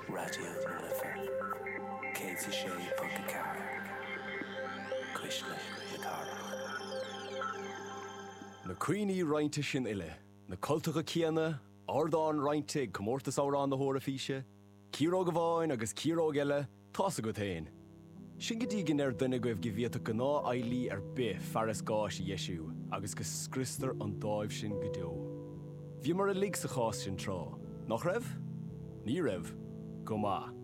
Raidió na Life 106.4 Cuisle na Cathrach. Na cuimhní roinnte sin uile, na cultacha céanna, ardán roinnte ag Comórtas Amhrán na hEoraifíse, ciaróg amháin agus ciaróg eile, Tá's agat fhéin. Sin go dtí go ndeireann duine agaibh go bhféadfadh gnáthfhear DIY ar bith fearas gáis a dheisiú agus go scriostar an dáimh sin go deo. Bhíomar uilig sa chás sin tráth, nach raibh? Ní raibh? Go maith.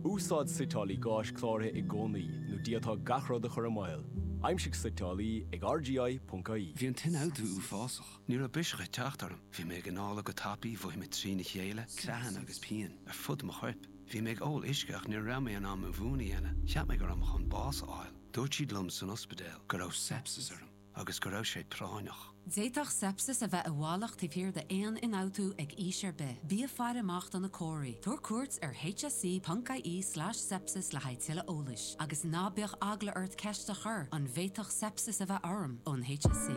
Úsáid suiteálaí gáis cláraithe i gcónaí nó d'fhéadfá gach rud a chur i mbaol, aimsigh suiteálaí ag RGI.ie. Bhí an t-ionfhabhtú uafásach. Ní raibh biseach ag teacht orm. Bhí mé ag análadh go tapaidh, mhothaigh mé trína chéile, creathanna agus pian ar fud mo choirp. Bhí mé ag ól uisce ach ní raibh mé in ann mo mhún a dhéanamh. Cheap mé go raibh mé chun bás a fháil. Dúirt siad liom san ospidéal go raibh sepsis orm agus go raibh sé práinneach. D'fhéadfadh sepsis a bheith i bhfalach taobh thiar d'aon ionfhabhtú ag aois ar bith. Bí ag faire amach do na comharthaí. Tabhair cuairt ar hse.ie slash sepsis le haghaidh tuilleadh eolais. Agus ná bíodh eagla ort ceist a chur, an bhféadfadh sepsis a bheith orm ón HSE?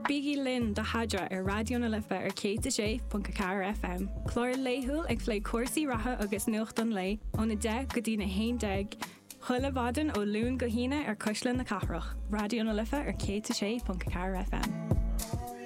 Bígí linn do Sheadra ar Raidió na Life ar 106.4 FM, clár laethúil ag plé cúrsaí reatha agus nuacht an lae óna 10 go dtí'n 11 chuile mhaidin ó Luan go hAoine ar Cuisle na Cathrach, Raidió na Life ar 106.4 FM.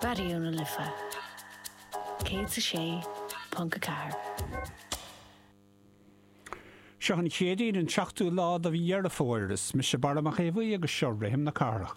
Raidió na Life 106.4. Seo an Chéadaoin an seachtú lá de mhí Dheireadh Fómhair. Is mise Barra Mac Aodha Bhuí agus seo Rithim na Cathrach.